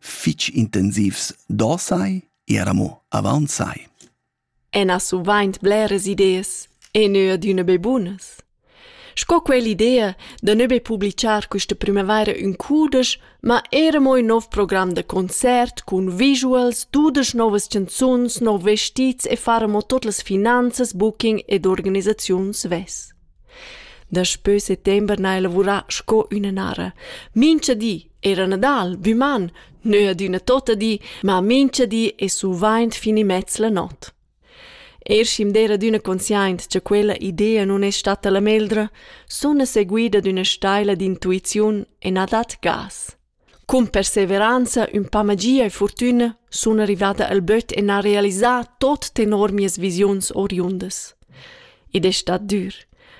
fich intensivs do sai, era mo avant sai. En ha suvaint bleras ideas e neu adüna be bunas. Sco quell'idea da ne be publicar questa primavaira in cudesch, ma era mo in nov program da concert cun visuals, dudesch novas canzuns, nov vestits e fare mo tot las finanzas, booking ed organisaziun svess. Daspö settember n'haja lavurà sco üna nara. Mincha di era Nadal, büman, neu adüna tota di, ma mincha di es suvaint fin immez la not. Er schi'm d'eira adüna consciaint cha quella idea nun es statta la meglra, suna seguida d'üna staila d'intuiziun e na dat gas. Cun perseveranza, ün pa magia e furtüna sun rivada al böt e n'ha realisà tot tenor mias visiuns oriundas. Id es stat dür,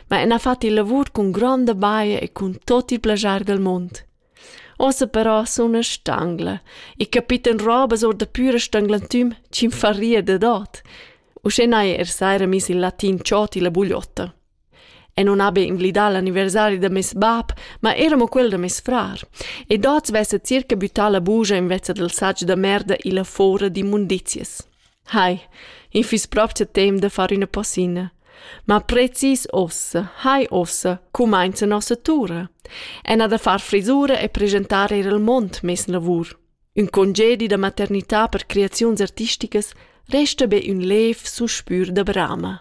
ma ün ha fat il lavur cun gronda baja e cun tot il plaschar dal mond. Ossa però suna stangla e capita'm robas or da püra stanglantüm chi'm farria dad ot. Uschè n'haja er saira miss il latin Cioti la bugliotta. E non habi inglidà l'anniversari da meis bab, ma era mo quel da meis frar. Ed oz vessa circa büttà la bugia invezza dal satg da merda illa fora d'immundizias. Hai, in fiss propcha temp da far üna passina. Ma precis ossa, hai ossa, cumainza nossa tura. E na da far frisura e presentar eir al mond mes lavur. Ün congedi da maternità per creaziuns artisticas resta be ün lev suspür da brama.